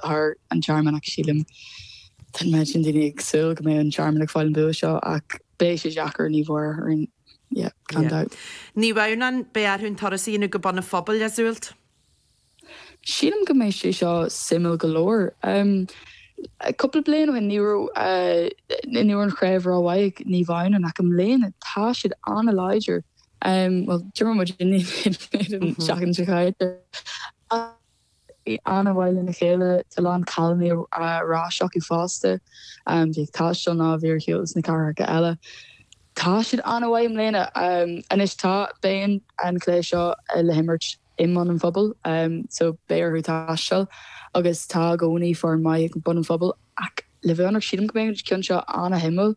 thar an Tearmann ach sílim. Tá an méid sin daoine ag súil go mbeidh an Tearmann ag fáil an bua seo ach beidh sé deacair ní bhfuair orainn yeah, gan dabht. Naomh Adhamhnáin, beidh orthu an turas a dhéanamh go Bun an Phobail, Iseult? Sílim go mbeidh sé seo suimiúil go leor. Cúpla bliain ó shin ní raibh ní raibh an chraobh ró mhaith ag Naomh Adhamhnáin ach i mbliana tá siad an-láidir. Bhuel, d'imir muid in éadan Seachtain seo chaite ach, Bhí an-mhaith lena chéile, a lán cailíní ar ais acu fosta. A bhí ag taisteal nó a bhí ar shiúl sna cathracha eile. Tá siad an-mhaith i mbliana. Anois tá, beidh an cluiche seo le himirt i mBun an Phobail so beidh orthu taisteal agus tá i gcónaí foireann maith ag Bun an Phobail ach le bheith ionraic sílim go mbeidh an ceann seo an-suimiúil.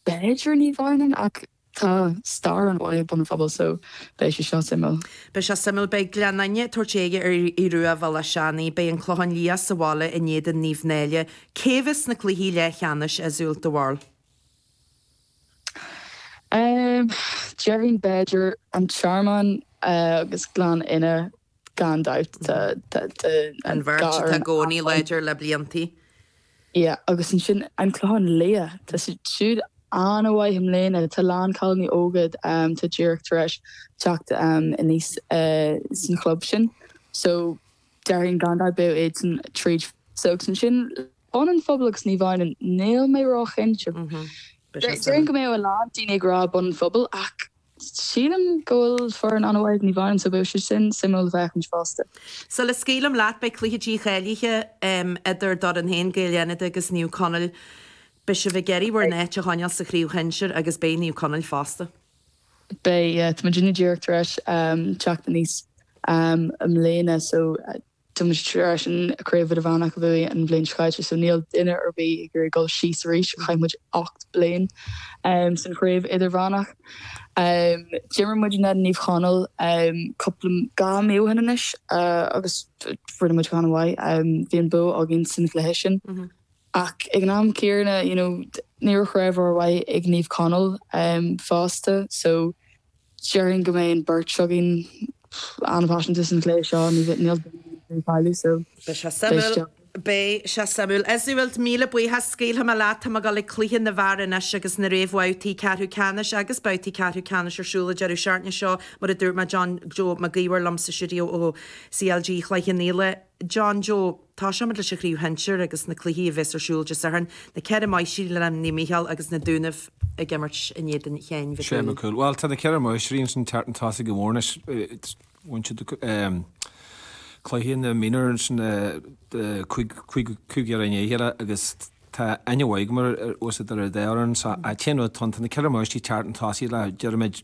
B'fhéidir Naomh Adhamhnáin ach. Tá stair an bhaile Bun an Phobail so, beidh sé seo suimiúil. Beidh seo suimiúil. Beidh Gleann Fhinne ag tabhairt aghaidh ar Aodh Ruadh Bhéal Átha Seanaidh. Beidh an Clochán Liath sa bhaile in éadan Naomh Náille. Cé bheas sna cluichí leathcheannais, Iseult, do bharúil? Déarfainn b'fhéidir An Tearmann agus Gleann Fhinne. gan dabht, tá an bheirt acu i gcónaí láidir le blianta. Yeah, agus ansin an Clochán Liath, tá siad an-mhaith i mbliana, tá a lán cailíní óga atá díreach tar éis teacht aníos san chlub sin, so déarfainn gan dabht beidh iadsan tríd so agus ansin Bun an Phobail agus Naomh Adhamhnáin, níl mé ró chinnte. Déarfainn go mbeadh a lán daoine ag rá Bun an Phobail ach Sílim go bhfuil foireann an-mhaith ag Naomh Adhamhnáin so beidh sé sin suimiúil le féachaint fosta. Sula scaoilim leat, beidh cluiche dícháilithe idir d'fhoireann féin, Gaeil Fhánada, agus Naomh Conaill. Beidh sibh ag iarraidh bhur n-áit a choinneáil sa chraobh shinsir agus beidh Naomh Conaill fosta. Beidh, yeah. Tá muid díreach tar éis teacht aníos i mbliana so. Tá muid tar éis an Craobh Idirmheánach a bhuaigh an bhliain seo caite so níl duine ar bith ag iarraidh dul síos arís, chaith muid ocht bliain san Chraobh Idirmheánach. D'imir muid in éadan Naomh Chonaill cúpla, dhá mí ó shin anois agus rinne muid go han-mhaith, bhí an bua againn san chluiche sin. Ach ag an am céanna, you know, ní raibh craobh ró mhaith ag Naomh Conaill fosta, so déarfainn go mbeidh an beirt againn an-phaiseanta san chluiche seo, níl duine ar bith ag iarraidh cailleadh, so Beidh sé beidh suimiúil. Beidh sé suimiúil. Iseult, míle buíochas. Scaoilfidh mé leat, tá mé ag dul ag cluichí na bhfear anois agus na réamhbhabhtaí ceathrú ceannais agus babhtaí ceathrú ceannais ar siúl an deireadh seachtaine seo, mar a dúirt mé, John Joe Mac Íomhair liom sa stuidió ó CLG Chloich Cheann Fhaola. John Joe, tosóimid leis an Chraobh Shinsear agus na cluichí a bheas ar siúl Dé Sathairn, na ceithre Máistrí le Naomh Micheál agus na Dúnaibh ag imirt in éadan Sheáin Mhic Cumhaill. Bhuel, tá na ceithre Máistrí ansin ag teacht chun tosaigh go mór anois, bhain siad cluiche na minor ansin cúig, cúig, cúig dheireadh i ndiaidh a chéile agus tá aithne mhaith agam ar, arsa Doire Dé orainn so, a' t-aon rud, tá na ceithre Máistrí ag teacht chun tosaigh le, deirimid,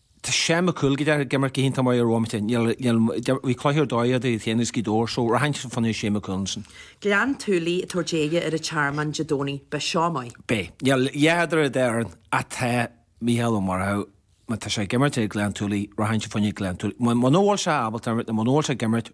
Tá Seán Mac Cumhaill go deimhin ag imirt go hiontach maith ar an bhomaite. Níl, níl, bhí cluiche ar dóigh idir iad féin agus Gaoth Dobhair so rachainnse fá choinne Seán Mac Cumhaill ansin. Gleann tSúilí ag tabhairt aghaidh ar an Tearmann Dé Domhnaigh, beidh seo maith. Beidh. Níl a dhath idir an dá fhoireann ach tá Mícheál Ó Murchú, má tá sé ag imirt ag Gleann tSúilí, rachainnse fá choinne Gleann tSúilí. Muna bhfuil sé ábalta imirt nó muna bhfuil sé ag imirt,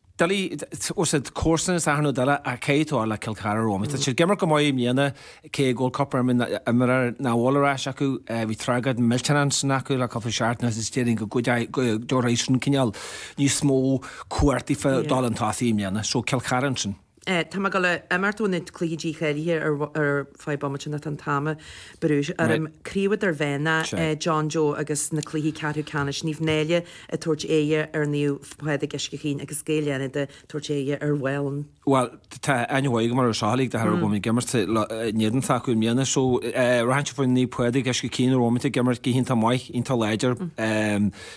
Doiligh, tá siad comharsan is athair nó duine a caí tú le Cill Chartha romham. Tá siad ag imirt go maith i mbliana cé go bhfuil cúpla imreoir nach bhfuil ar ais acu. Bhí tragóid millteanach ansin acu le cúpla seachtain anuas is déarfainn go dtabharfaidh sin cineál níos mó cuartaí fá dul chun tosaigh i mbliana. So Cill Chartha ansin. Tá mé ag gabháil a imeacht ó na cluichí dícháilithe ar feadh bomaite nó tá an t-am ag brú orm. Craobh Idirmheánach a John Joe agus na cluichí ceathrú ceannais, Naomh Náille ag tabhairt aghaidh ar Naomh Pádraig Uisce Chaoin agus Gaeil Fhánada ag tabhairt aghaidh ar Mhálainn. Bhuel, tá aithne mhaith agam ar an Sraith League de thoradh go bhfuil mé ag imirt in éadan s'acu i mbliana. So, rachainnse fá choinne Naomh Pádraig Uisce Chaoin ar an bhomaite ag imirt go hiontach maith, iontach láidir.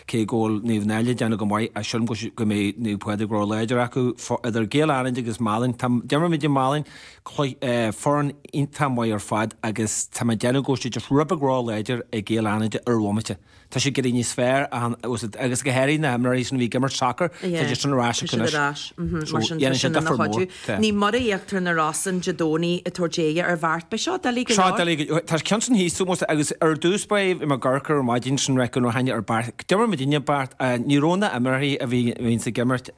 cé go bhfuil Naomh Náille ag déanamh go maith sílim go mbeidh Naomh Pádraig ró-láidir acu, idir Gaeil Fhánada agus Málainn, tá, d'imir muid i Málainn, foireann iontach maith ar fad agus tá mé ag déanamh go bhfuil siad just rud beag ró-láidir ag Gaeil Fhánada ar an bhomaite, tá siad ag éirí níos fearr agus go háirithe na himreoirí sin a bhí ag imirt sacar, tá siad sin ar ais acu anois, so dhéanann sé difear mór. Naomh Muire Íochtar na Rosann Dé Domhnaigh ag tabhairt aghaidh ar Bheart. Beidh seo doiligh go Seo leor. doiligh go leor. Tá an ceann sin thíos fúm, agus ar dtús ba é bhí mé ag amharc ar an mhaidin sin reicfidh nár tháinig ar Beart. D'imir muidinne Beart. Ní raibh na himreoirí a bhíonns ag imirt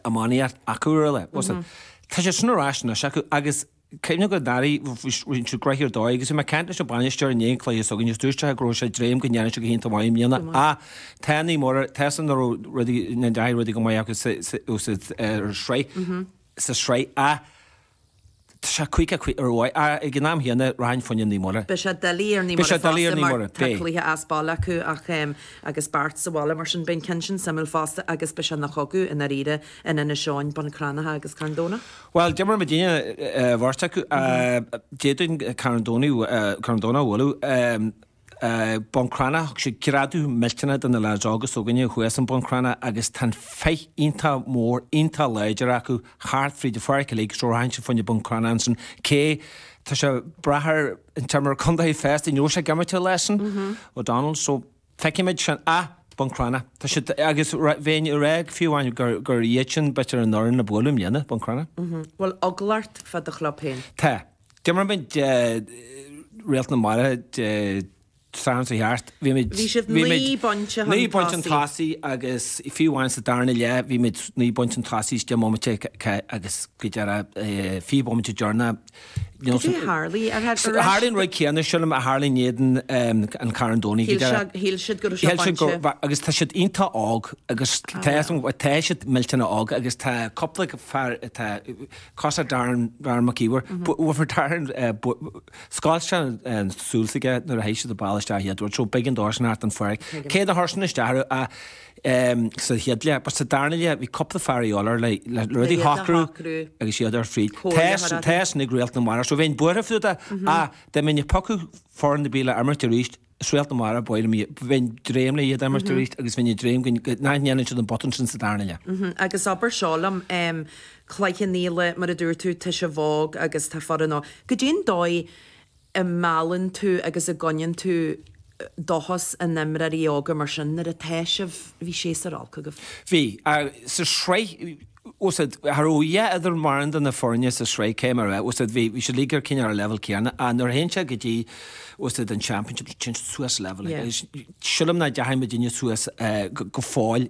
iománaíocht acu ar an lá. Bhuel, sin. Tá siad sin ar ais anois acu agus. Cuimhnigh go ndeachaigh roinnt de Grettir ar dóigh, agus bhí mé ag caint leis an bhainisteoir i ndiaidh an chluiche s'againne, agus dúirt sé go raibh sé ag dréim go ndéanfadh sé go hiontach maith i mbliana, ach tá Naomh Muire, tá a fhios agam nach raibh rudaí, nach ndeachaigh rudaí go maith acu sa, ó sa sraith, sa sraith, ach tá sé caoga caoga ar ndóigh, ach ag an am chéanna, rachainn fá choinne Naomh Muire. Beidh sé doiligh ar Naomh Beidh Muire sé doiligh ar fosta Naomh mar Muire, tá beidh. cluiche as baile acu ach em agus Beart sa bhaile, mar sin beidh an ceann sin suimiúil fosta agus beidh sé ina chogadh i ndáiríre in Inis Eoghain, Bun Cranncha agus Carn Domhnach. Bhuel, d'imir muidinne an bheirt acu. D'fhéadfainn Carn Domhnach a bhualadh. Bun Cranncha, thug sé greadadh millteanach do na leaids óga s'againne thuas in Bun Cranncha agus tá an féith iontach mór, iontach láidir acu thart fríd an pháirc uilig so rachainnse fá choinne Bun Cranncha ansin cé, tá sé ag brath ar an imreoir contae fosta, an mbeidh sé ag imirt leis an O'Donnells so. Feicfimid sin a. Buncrana. Tá siad agus bheinn ag rá fiú amháin gur iad sin b'fhéidir an fhoireann le bualadh i mbliana, Buncrana. Bhfuil eagla ort fá do chlub féin? Tá. D'imir muid Réalt na Mara Dé Sathairn seo chuaigh thart. Bhí muid. Bhí sibh naoi bpointe chun tosaigh. Naoi bpointe chun tosaigh agus fiú amháin sa darna leath bhí muid naoi bpointe chun tosaigh is deich mbomaite agus faoi dheireadh fiche bomaite deireanach, Is é tharla ar ais. Tharla an rud céanna, sílim, a tharla in éadan an Carn Domhnaigh, go deimhin. Shíl siad go raibh sé bainte. Agus tá siad iontach óg, agus tá siad millteanach óg, agus tá cúpla fear, tá cosa Darren Mac Íomhair, bhuafar Darren, scoilt sé an súil aige nuair a théigh siad ag ball isteach a Edward, so big endorsement thart an foirg. Cé na hairseanna isteach, Sa chéad leath, but sa darna leath, bhí cúpla fear ag iolar le rudaí a shocrú agus iad ar fríd. Teastaigh ag réalt na mara. So bheinn buartha fá dtaobh de. Ach dá mbeinn ag piocadh foireann ar bith le imirt arís, is réalt na mara ab fhearr liom iad. Bheinn dréim le iad a imirt arís agus bheinn ag dréim nach ndéanann siad an botún sin sa darna leath. Agus abair seo liom, Cloich Cheann Fhaola, mar a dúirt tú, tá sibh óg agus tá foireann óg. Goidé an dóigh, a meallann tú agus a gcoinníonn tú dóchas in imreoirí óga mar sin nuair atá sibh, bhí séasúr olc agaibh. Bhí. Sa sraith, tá's agat, cha raibh a dhath idir mórán de na foirne sa sraith cé mar a, tá's agat, bhí siad uilig cineál ar an leibhéal céanna ach nuair a théann sé go dtí, tá's agat, an Championship téann siad suas leibhéal. Sílim nach deachaidh muidinne suas go fóill.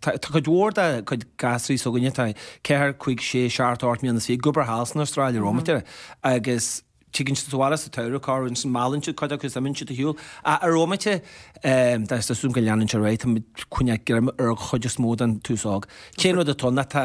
Tá cuid mhór de chuid gasúraí s'againne, atá ceathair, cúig, sé, seacht, ocht mbliana anois, ag obair thall san Astráil i rómite agus tigeann siad abhaile sa tsamhradh cá rabhas, ansin meallann siad cuid acu agus imíonn siad ar shiúl a rómite agus tá súil agam go leanann sé ar aghaidh. Tá muid ag coinneáil greim ar an chuid is mó den t-aos óg. Téann rud i dtreonna. Tá.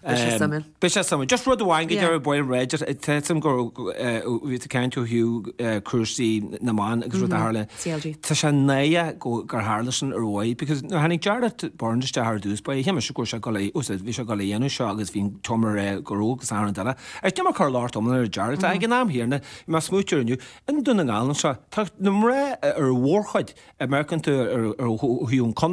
Beidh sé suimiúil. Beidh sé suimiúil. Just rud amháin go deimhin bail réidh, tuigim go bhfuil tú ag caint faoi cúrsaí na mban agus rud a tharla. CLG. Tá sé náireach gur tharla sin ariamh because nuair tháinig Jarlath Burns isteach ar dtús ba é a shéamais go raibh sé ag dul a, tá's agat, bhí sé ag dul a dhéanamh seo agus bhí tum ar air go raibh go san an duine agus níl mé ag cur locht iomlán ar Jarlath ag an am chéanna, bhí mé ag smaoiteamh inniu i nDún na nGall anseo, tá na mná ar mhórchuid imeachtaí ar fud an contae.